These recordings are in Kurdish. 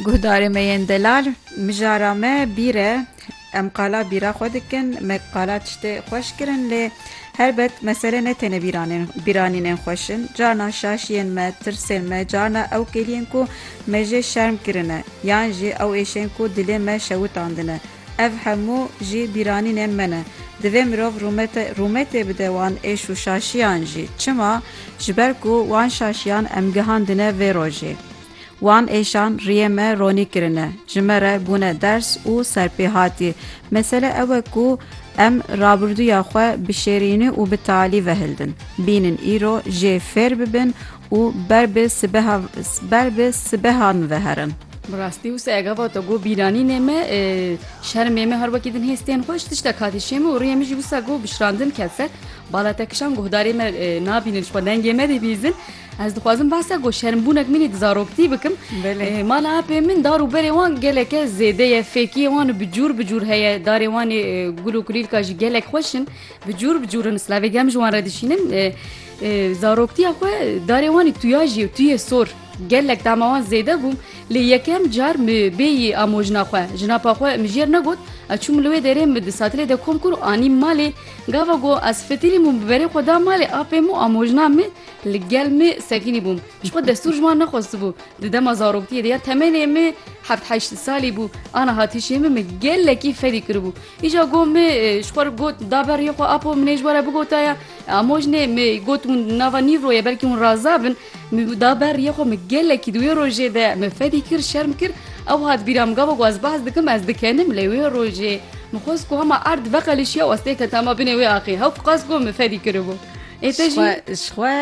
Guhdarê me yên delal mijara me bîr e. Em qala bîra xwe dikin, me qala tiştê xweş kirin lê helbet mesele ne têne bîranînên xweş in. Carna şaşiyên me, tirsên me, carna ew kêliyên ku me jê şerm kirine yan jî ew êşên ku dilê me şewitandine. Ev hemû jî bîranînên me ne. Divê mirov rûmete rûmetê bide wan êş û şaşiyan jî. Çima? Ji ber ku wan şaşiyan em gihandine vê rojê. Wan êşan riyê me ronî kirine, ji me re bûne ders û serpêhatî. Mesele ew e ku em rabirduya xwe bişêrînî û bi talî vehildin. Bînin îro jê fêr bibin Û ber bi sibeha ber bi sibeha min ve herin. Bi rastî wisa ega vata got bîranînê me şermê me her wekî din hê stên xwe ji tişta katî şê min û riyê min jî wisa got bi şirandin ket ser. Bala te kişand guhdarê me nabînin ji xwe dengê me dê bîzin. Ez dixwazim behsa got şermbûnek min ê di zaroktî bikim. Mala apê min dar û berê wan geleke zêde ye. Fêkiyê wan bi cûr bi cûr heye. Darê wan ê gul û kulîlka jî gelek xweş in. Bi cûr bi cûr in. Silavê germ ji wan re dişînin. Zaroktiya xwe darê wan ê tuyajî û tuyê sor. Gelek tahma wan zêde bû lê yekem car mi bêyî amojna xwe. Jinapa xwe mijêr negot. Ez çûm li wê derê mi di satilê de kom kir û anîm malê. Gava ku ez fitirîm û biberê xwe da malê apê min û amojna min li gel min sekinî bûm. Ji xwe destûr ji wan nexwestibû. Di dema zaroktiyê de ya temenê min heft heşt salî bû. Ana hatişê min min gelekî fedî kiribû. Îja got me ji xwe re got da ber riyê xwe apo min ê ji we re bigotaya amojnê me got hûn di nava nîvro ye belkî hûn raza bin min da ber riyê xwe min gelekî di wê rojê de min fedî kir şerm kir ew hat bîra min gava ku ez behs dikim ez dikenim lê wê rojê min xwest ku hema erd veqelişiya û ez têketama binê wê axê hew qas got min fedî kiribû. Ê te jî ji xwe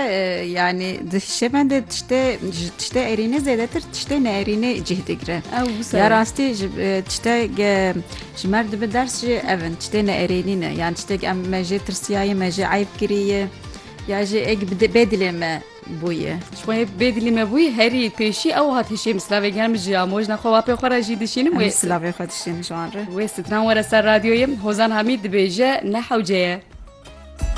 yanî di hişê me de tiştê ji tiştê erînê zêdetir tiştê neerînê cih digire. Ya rastî ji tiştek ji mer dibi ders jî ev in tiştê neerênî ne yan tiştek em me jê tirsiyayê me jê eyb kiriye ya jê ek bê dilê me bûye. Ji xwe bê dilê me bûye herî pêşî ew hat hişê min silavê genim ji ya mojna xwe wapê xwe re jî dişînim wê silavê xwe dişînim ji wan re. Wê stran were ser radyoyê Hozan Hamîd dibêje ne hewce ye.